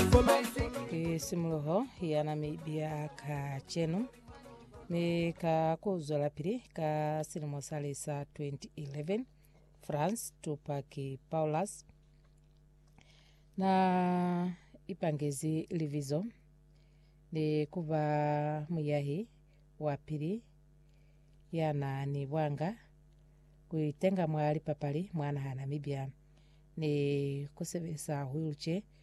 Ki simuluho yana mi biya ka cenu mi ka ku zwelapili ka silimo sa li sa 2011 France Tupac Paulus na ipangezi libizo ni kuba muyahi wa pili yana ni bwanga kuitenga mwa lipapali mwa naha Namibia ni kusebesa wheelchair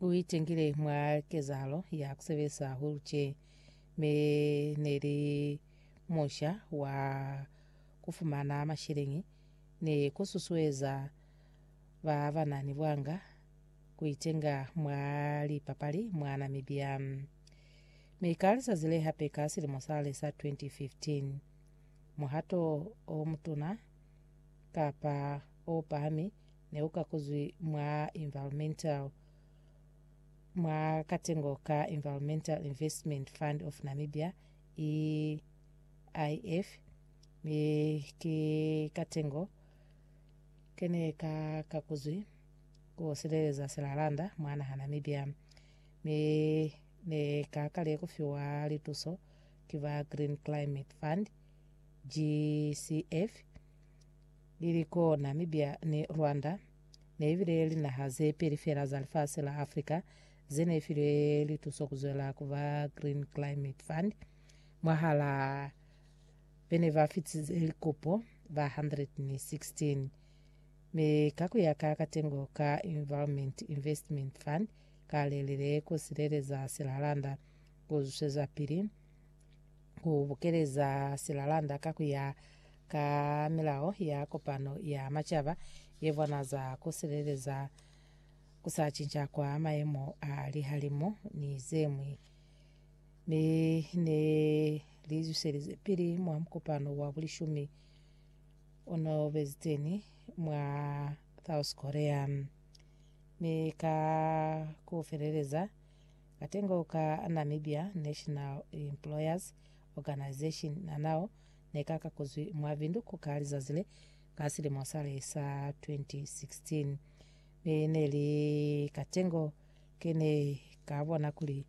U itengile mwa kezahalo ya ku sebelisa hahulu tje me ne li musha wa ku fumana masheleñi ni ku susueza ba ba na ni bwanga ku itenga mwa lipapali mwa Namibia. Mi ka lizazi le hape ka silimo sale sa 2015, muhato o mutuna kapa o pahami Ne u kakuzwi mwa Environmental mwa katengo ka Environmental Investment Fund of Namibia, EIF, mi ki katengo kene ka kakuzwi ku sileleza silalanda mwa naha Namibia, mi ne ka kale kufiwa lituso ki ba Green Climate Fund, GCF, Li li ko Namibia ni Rwanda, ne ibile linaha ze peli fela za lifasi la Africa ze ne filwe lituso ku zwela ku ba Green Climate Fund. Mwahala be ne ba fitize likopo ba 116, mi ka ku ya ka katengo ka Environment Investment Fund ka lelele ku sileleza silalanda ku zwezapili ku bukeleza silalanda ka ku ya ka milao ya kopano ya macaba ye bonaza ku sileleza ku sa cinca kwa maemo a lihalimu ni zemwi ne ne li zuselize pili mwa mukopano wa bulishumi ono beziteni mwa South Korea mi ka ku feleleza Katengo ka Namibia National Employers Organisation nanao nekakakuzwi mwa Windhoek ka lizazi le ka silimo sale sa 2016, mi neli katengo kene kabona kuli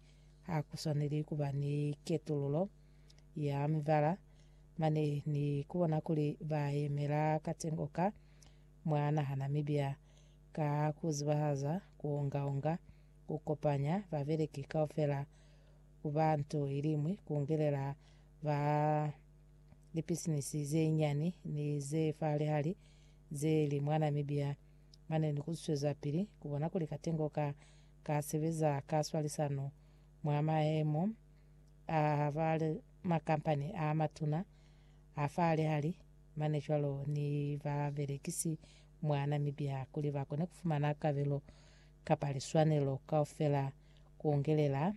hakuswaneli kuba ni ketululo ya mibala mane ni kubona kuli bayemela katengo ka mwa naha Namibia ka kuzibahaza kuongaonga Ku kopanya babeleki kaufela ku ba nto iliñwi ku ngelela ba lipisinisi ze nyani ni ze fa lihali ze li mwa Namibia mane ni ku swezapili ku bona kuli Katengo ka ka sebeza ka swalisano mwa mayemo a ba makampani a matuna a fa lihali mane cwalo ni babelekisi mwa Namibia kuli ba kone ku fumana kabelo kapa liswanelo kaufela kuongelela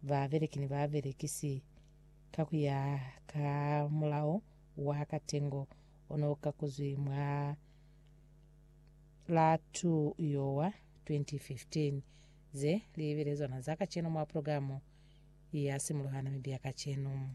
babeleki ni babelekisi ka kuya ka mulao wa katengo ono ukakuzwi mwa la 2 Yowa 2015. Ze li belezwana za kacenu mwa progamu ya Simuluha Namibia Kacenu.